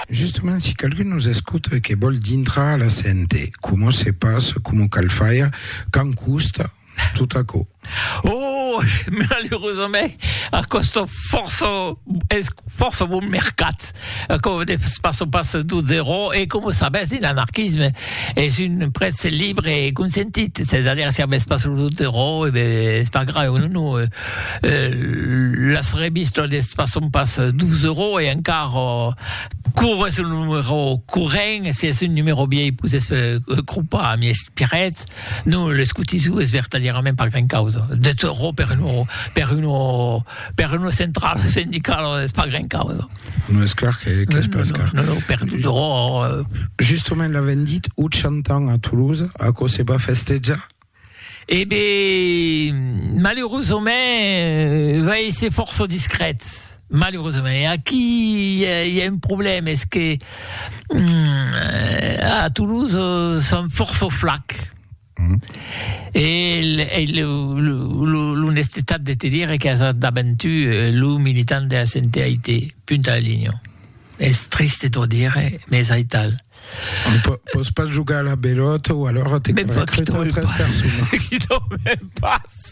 Justement si qualqu'un nos escota e que vòl dintrar a la CNT, coma se passa, coma cal faire, quand costa, tot aquò? Oh! Malerosament, a còsta fòrça, es fòrça bon mercat. Aquò de pas o pas d'o zerò e com o sabètz de l'anarquisme es un prètz libre e consentit, se da dire si avètz pas lo zerò e be es pas grave o non o las revistas de pas son pas d'o zerò e encara cor es un numero corrent si es un numero viei pus es cropa a mies pirètz non l'escotisou es vertadièrament pas gran causa de zerò per un per un Per una centrala sindicala es pas gran causa. Non es clar que qu'es pas car. Non, non, per tot ro... Justement l'avèm dit 80 ans a Toulouse, aquò se va festejar? Eh ben, maleurosament va èsser fòrça discret, maleurosament. E aquí i a i a un problèma, es que a Toulouse son fòrça flacs. Mm. E, e l'onestetat de te dire que as daventu eh, lo militant de la CNTAIT, punta la linha. Es triste t'ho dire, mais aital. On peut, peut pas jugar à la belote ou alors t'es recruté 13 personnes. Qui dorment pas.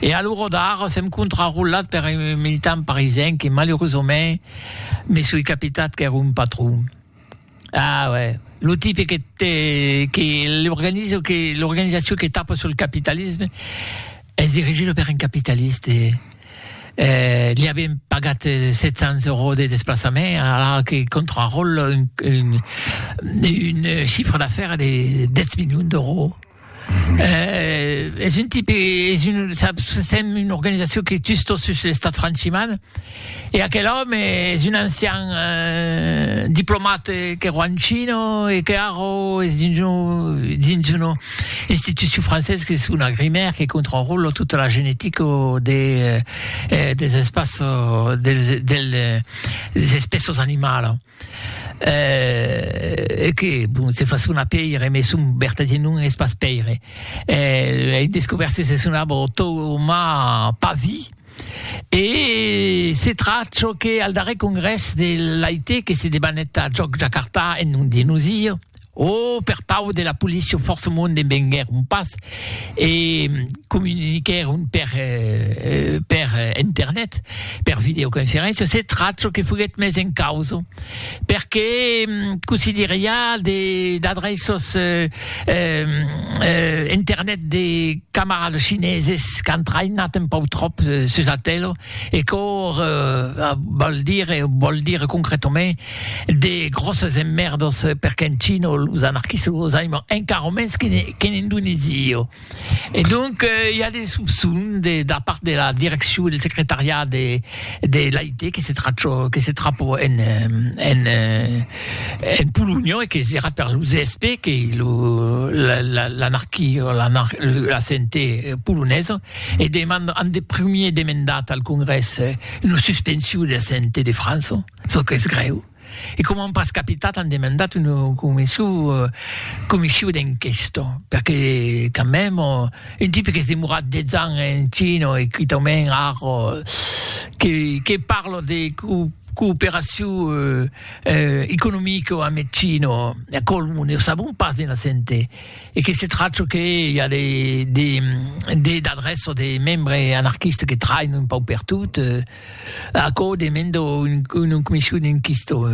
E a l'ora d'ara sèm contrarolat per un militant parisien que malurosament me soi capitat qu'ère un patron. Ah uè, lo tipe que te que l'organizo que l'organizacion que tapa sul capitalisme es dirigido per un capitaliste. Eh li avien pagat 700 euros de desplaçament ara que contraròla un un un chiffre d'affaires de 10 milions d'euros. Eh, es un tipe, es un, saps, sèm una organizacion que tus tot sus l'estat franchiman, e aquel òme es un ancian eh, diplomat que ro en China e que ara es dins una, dins una institucion francesa que son agrimèr, que contraròla tota la genetica de, eh, des espaços, dels, del, des espèços animalas. Eh, e que, bon, se fa sonar pèire, mès son vertadièr nom es pas Pèire. Eh, ei descobèrt que se sonava Tomà Pavi, e se trach çò que al darrèr congrès de l'AIT que se debanèt a Jòc Jakarta en nom de nosir, O per pau de la policia fòrçamont en venguèron pas e comuniquèron per per internet, per videoconferéncia, se tracho que foguèt mes en causa, perque cossí dire i a de d'adreços internet de camarades chineses qu'an traïnat un pauc tròp sus atélo, E quò val dire, vòl dire concretament de gròsses emmèrdas per qu'en China los anarquistas los aiman encara mens qu'en Indonèsia. E donc i a de sopçons de da part de la direccion del secretariat de de l'AIT que se trachò que se trapò en en en Polonha e que serà per lo ZSP que lo l'anarquia la CNT polonesa E deman an de primier demendat al Congrès una suspension de la CNT de França, çò qu'es grèu, e coma an pas capitat an demandat una comission d'enquesta, perque quand même un tipe qu'es demorat 10 ans en China e quitament ara que parla de cooperacion economica amb China, aquò ne sabon pas ena CNT. e que se tracho que i a de de de d'adrèço de membre anarquiste que train un pauc per tot eh aquò demendo un una comission inquisto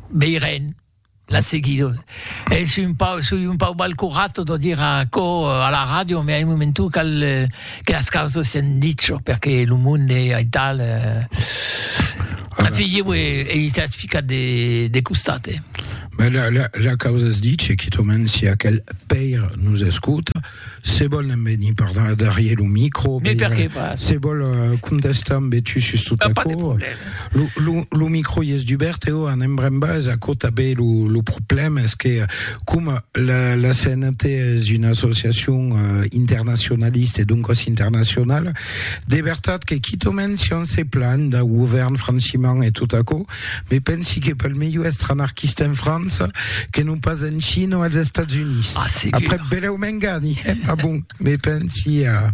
veirem la seguido e son un pauc son un pauc balcorat tot o dire aquò a la ràdio me a un momentu cal Que las causas sián dicho, perque lo monde es aital, eh, afegiu e ei sas ficat de, de costat, eh. Mès la, la, la causa es dicho, quitament si aquel pèir nos escota, se vòl ne'n venir per darrier lo micro, Mais pèir, perqué pas? se vòl contestar ambe tu sus tot Pas de aquò, problème. Lo, lo, lo micro i es dubèrt, eu an embremba es aquò tabé lo, lo problèm es que coma la, la CNT es una associacion uh, internacionalista e doncas internacionala, de vertat que quitomen si on se plan d'un govèrn franchiment e tot aquò, me pensi que pel melhor èstre anarquista en França que non pas en China o als Estats Units. Ah, Après belèu m'engani, eh, ma bon, me pensi a...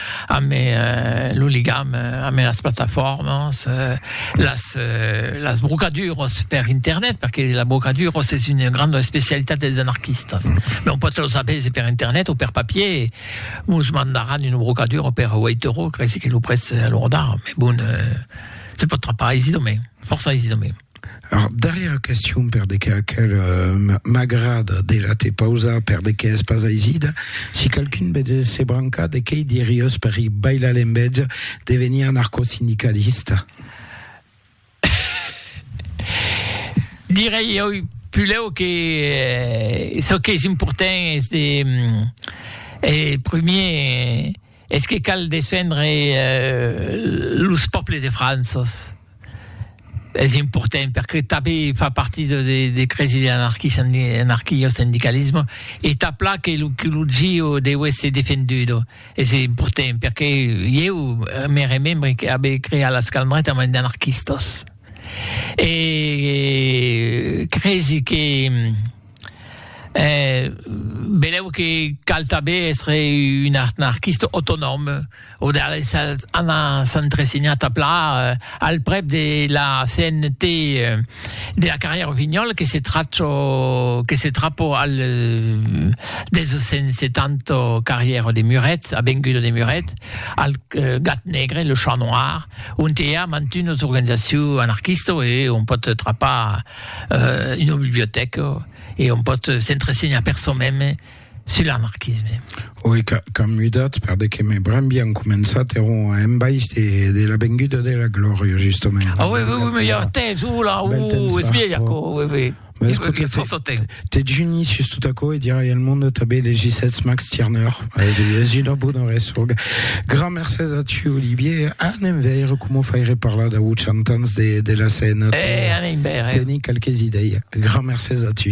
ame lo ligam ame las plataformas las las brocaduras per internet perque la brocadura es una granda especialitat dels anarquistas non pas los avèsi per internet o per papier mos mandaran una brocadura per waitoro cresi que lo prètz a lo rodar me bon se pot trapar aisidomènt fòrça aisidomènt Ar darrièra question per de qu'a quel m'agrada de la te pausar per de qu'a es pas aisida, si qualqu'un be de se brancar de quei diriós per i bailar l'envètz de venir anarcosindicalista? Direi oi pulèu que çò qu'es important es de e premier Es que cal defendre los pòbles de Franças. Es important perque tanben fa partit de cresi de l'anarquio-sendicalisme e tà plan que lo CULUGIO deu èsser defendudo. Es important perque ieu me remembre que abe creat las calmretas mas d'anarquistas e cresi que E benlèu que cal tanben èstre un anarquista autonòm o de anar s'entresenhar tà plan al prèp de la CNT de la carrièra Rossinyòl que se tracho que se trapo al 270 carrièra de Muret, avenguda de Muret, al Gat Negre, le Chat Noir, ont i a mantunas organizacions anarquistas e on pòt trapar euh, una bibliotèca e on pòt s'entresenhar per sò meme sul anarquisme. Oi, qu'an mudat, per de que me bram bien començat, era un embaish de, de la venguda de la glòria, justament. Ah oui, oui, oui, me ja temps, oula, uh, es vieja, oui, oui. Mas, Dejuni sus tot aquò e dirai al monde tanben les gissets Max Tirneur. Es una bona resòga. Gran mercés a tu, Olivier. Anem veire coma faire parlar dau 80 ans de, de la scène. Eh, anem veire. Teni quelques idei. Gran mercés a tu.